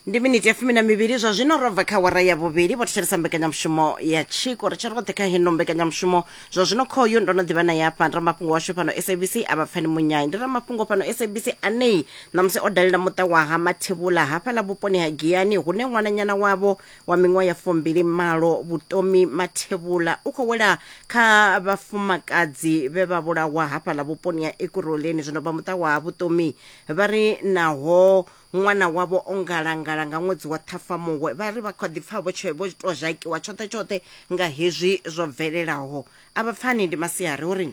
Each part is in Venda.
ndi miniti ya fumi na mivhili zwa zwino ro bva kha wara ya vhuvhili vho thetshelesa mbekanyamushumo ya tshiko ri tshi roṱhe kha heno mbekanyamushumo zwa zwino khoyu ndo no ḓivha na yafha ndi ramafhungo washu fhano sabc a vha pfani munyayi ndi ramafhungo fhano sabc anei ṋamusi o dalela muṱa wa ha mathevhula hafhaḽa vhuponi ha giyani hune ṅwananyana wavho wa miṅwaha ya fumbili malo vhutomi mathevhula u khou wela kha vhafumakadzi vhe vha vhulawa hafhaḽa vhuponi ha ekuroleni zwino vha muṱa wa ha vhutomi Vha ri naho ṅwana wavho o ngalangala nga ṅwedzi wa Ṱhafamuhwe, vha ri vha kha ḓi pfa vho tou zhakiwa tshoṱhe-tshoṱhe nga hezwi zwo bvelelaho. A vha pfani ndi masiari uri.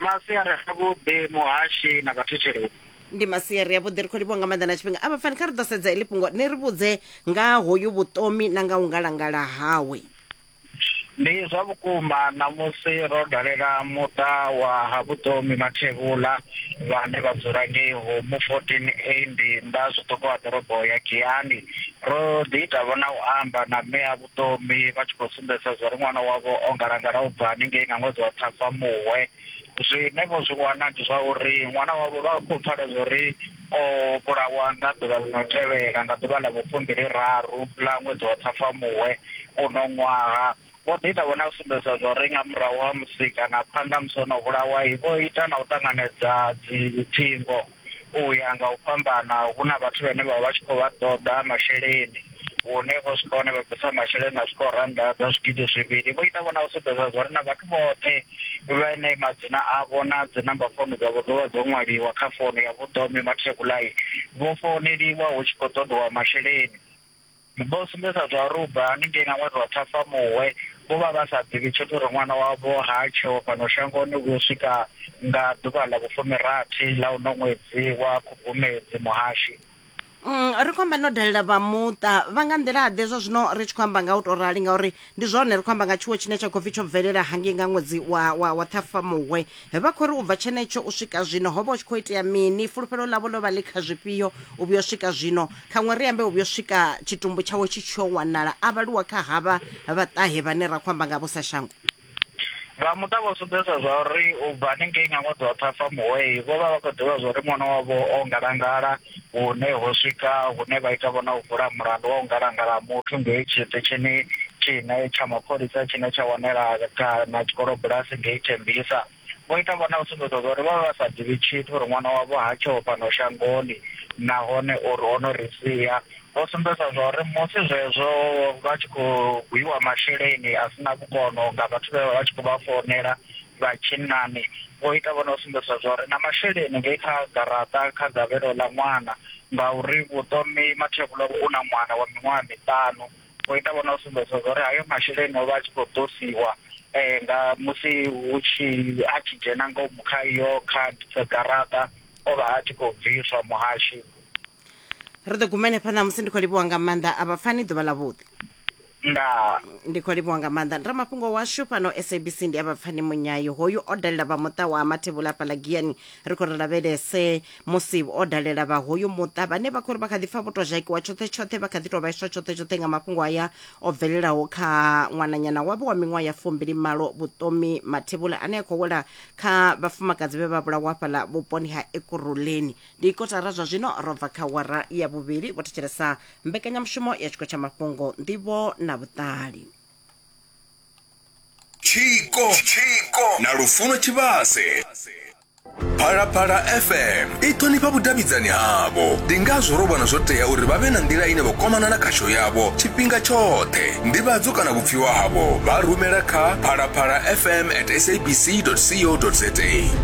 Masiari avhuḓi muhashi na vhathetshelesi. Ndi masiari avhuḓi ri khou livhuwa nga maanḓa na tshifhinga. A vha pfani kha ri ḓo sedza heḽi fhungo ni ri vhudze nga ha hoyu vhuṱomi na nga u ngalangala hawe. Ndi zwa vhukuma ṋamusi ro dalela muṱa wa ha Vhutomi Mathevhula vhane vha dzula ngei Humu 14A ndi nnḓa zwiṱuku ha ḓorobo ya Giyani. Ro ḓi ita vho na u amba na mme a Vhutomi vha tshi khou sumbedzisa zwa uri ṅwana wavho o ngalangala u bva haningei nga ṅwedzi wa Ṱhafamuhwe. Zwine vho zwi wana ndi zwa uri ṅwana wavho vha khou pfala zwa uri O vhulawa nga ḓuvha ḽi no tevhela, nga ḓuvha ḽa vhufumbili-raru ḽa ṅwedzi wa Ṱhafamuhwe uno ṅwaha. Vho ḓi ita vhone a sumbedza zwa uri nga murahu ha musi kana phanḓa ha musi o no vhulawa, vho ita na u ṱanganedza dziphingo u ya nga u fhambana, hu na vhathu vhane vha vha vha tshi khou vha ṱoḓa masheleni. hune vho swika hone vha bvisa masheleni a swikaho rannda dza zwigidi zwivhili vho ita vhona u sumbedza zwa uri na vhathu vhoṱhe vhane madzina avho na dzi namba founu dzavho dzo vha dzo ṅwaliwa kha founu ya vhuḓome mathekulayi vho founeliwa hu tshi khou ṱoḓiwa masheleni vho sumbedza zwa uri u bva haningei nga ṅwedzi wa ṱhafamuhwe vho vha vha sa ḓivhi tshithu uri ṅwana wavho ha tsheho fhano shangoni u swika nga ḓuvha ḽa vhufumirathi ḽa uno ṅwedzi wa khubvumedzi muhashi Mm, ri khou amba no dalela vha muṱa vha nga nḓila ḓe zwa zwino ri tshi khou amba nga u tou rali ngauri ndi zwone ri khou amba nga tshiwo tshine tsha khou pfi tsho bvelela hangei nga ṅwedzi wa, wa, wa ṱhafamuhwe vha khou ri u bva tshenetsho u swika zwino ho vha u tshi khou itea mini fulufhelo ḽavho ḽo vha ḽi kha zwifhio u vhuyo swika zwino khaṅwe ri ambe u vhuyo swika tshitumbu tshawe tshi tshiyo wanala a vhaluwa kha havha vhaṱahe vhane ra khou amba nga vho sa shango Vha muṱa vho sumbedza zwauri u bva hanengei nga ṅwedzi wa Ṱhafamuhwe vho vha vha khou ḓivha zwauri ṅwana wavho o ngalangala hune ho swika hune vha ita vho na u vula mulandu wa u ngalangala ha muthu ngei tshiṱitshini tshine tsha mapholisa tshine tsha wanela kana tshikolobulasi ngei Tembisa. vho ita vhone u sumbedza zwa uri vha vha vha sa ḓivhi tshithu uri ṅwana wavho ha tsheho fhano shangoni nahone uri o no ri sia vho sumbedza zwa uri musi zwezwo vha tshi khou gwiwa masheleni a sina vhukono nga vhathu vhe vha vha tshi khou vha founela vha tshinnani vho ita vhone u sumbedza zwa uri na masheleni ngei kha garaṱa kha gavhelo ḽa ṅwana ngauri vhuṱomi mathevhula u na ṅwana wa miṅwaha miṱanu o ita vhona u sumbedza uri hayo masheleni o vha a tshi khou ṱosiwa um nga musi hu tshi a tshi dzhena ngomu kha iyo card dza garaṱa o vha a tshi khou bviswa muhashi ri ḓo guma henefha ṋamusi ndi khou livhuwa nga maanḓa a vhapfani ḓuvha ḽa vhuḓi ndaa ndi khou livhuwa nga maanḓa ndi ramafhungo washu fhano sabc ndi a vhapfani munyayo hoyu o dalela vha muṱa wa mathevhula hafhaḽa giyani ri khou ri lavhelese musi o dalela vha hoyu muṱa vhane vha khou ri vha kha ḓi pfa vho tou zhakiwa tshoṱhe tshoṱhe vha kha ḓi tou vhaiswa tshoṱhe tshoṱhe nga mafhungo aya o bvelelaho kha ṅwananyana wavho wa miṅwaha ya fumbili malo vhuṱomi mathevhula ane a khou wela kha vhafumakadzi vhe vha vhulawa fhaḽa vhuponi ha ekuruleni ndi kotara zwa zwino ro bva kha wara ya vhuvhili vho thetshelesa mbekanyamushumo ya tshiko tsha mafhungo nḓivho na vhuṱali tshiko na lufuno tshivhase phalaphala fm i ṱhonifha vhudavhidzani havho ndi ngazwo ro vhona zwo tea uri vha vhe na nḓila ine vha kwamana na khasho yavho tshifhinga tshoṱhe ndivhadzo kana vhupfiwa havho vha rumela kha phalaphala fm at sabc co za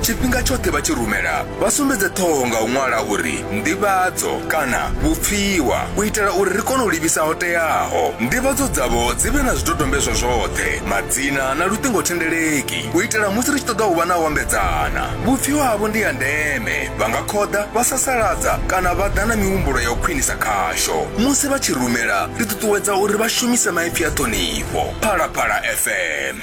tshifhinga tshoṱhe vha tshi rumela Vha sumbedze ṱhoho nga u ṅwala uri nḓivhadzo kana vhupfiwa u itela uri ri kone u livhisa ho teaho. Nḓivhadzo dzavho dzi vhe na zwidodombedzwa zwoṱhe, madzina na luṱingothendeleki u itela musi ri tshi ṱoḓa u vha na u ambedzana. Vhupfiwa havho ndi ha ndeme, vha nga khoḓa, vha sasaladza kana vha ḓa na mihumbulo ya u khwinisa khasho. Musi vha tshi rumela, ri ṱuṱuwedza uri vha shumise maipfi a ṱhonifho. Phalaphala FM.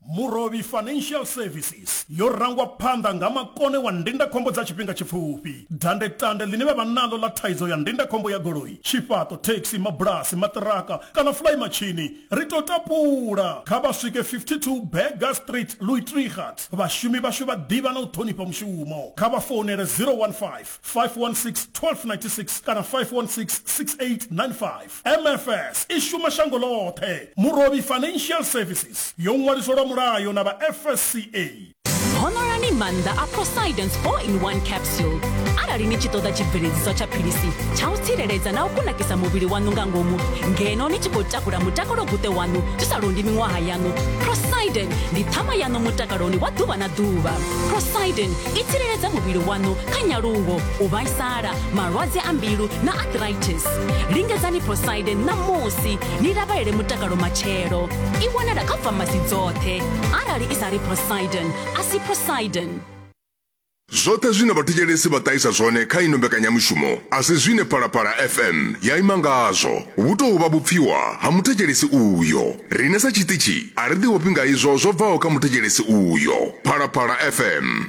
Murovhi Financial Services yo rangwa phanḓa nga makone wa ndindakhombo dza tshifhinga tshipfufhi. Dandetande ḽine vha vha naḽo ḽa thaidzo ya ndindakhombo ya goloi, tshifhaṱo, thekhisi, mabulasi, maṱiraka kana fulaimatshini, ri tou tapula. Kha vha swike 52 Burger Street, Luitrigat. Vhashumi vhashu vha ḓivha na u ṱhonifha mushumo. Kha vha founele 015 516 1296 kana 516 6895. mfs i shuma shango ḽoṱhe murovhi financial services yo ṅwaliswa lwa mulayo na vha fsca honorani maanḓa a prosidence 4 in 1 capsule arali ni tshi ṱoḓa tshibveledziswa tsha philisi tsha u tsireledza na u kunakisa muvhili waṋu nga ngomu ngeno ni tshi khou takula mutakalo guṱe waṋu zwi sa londi miṅwaha yaṋu prosiden ndi ṱhama yaṋu mutakaloni wa ḓuvha na ḓuvha prosiden i tsireledza muvhili waṋu kha nyaluwo u vhaisala malwadze a mbilu na arthritis lingedzani proside ṋamusi ni lavhelele mutakalo matshelo i wanala kha famasi dzoṱhe arali i sa ri prosiden a si prosiden zwoṱhe zwine vhathetshelesi vha ṱahisa zwone kha ino mbekanyamushumo a si zwine phalaphala fm ya ima ngazwo vhu tou vha vhupfiwa ha muthetshelesi uyo rine sa tshiṱitshi a ri ḓivhofhi nga izwo zwo bvaho kha muthetshelesi uyo phalaphala fm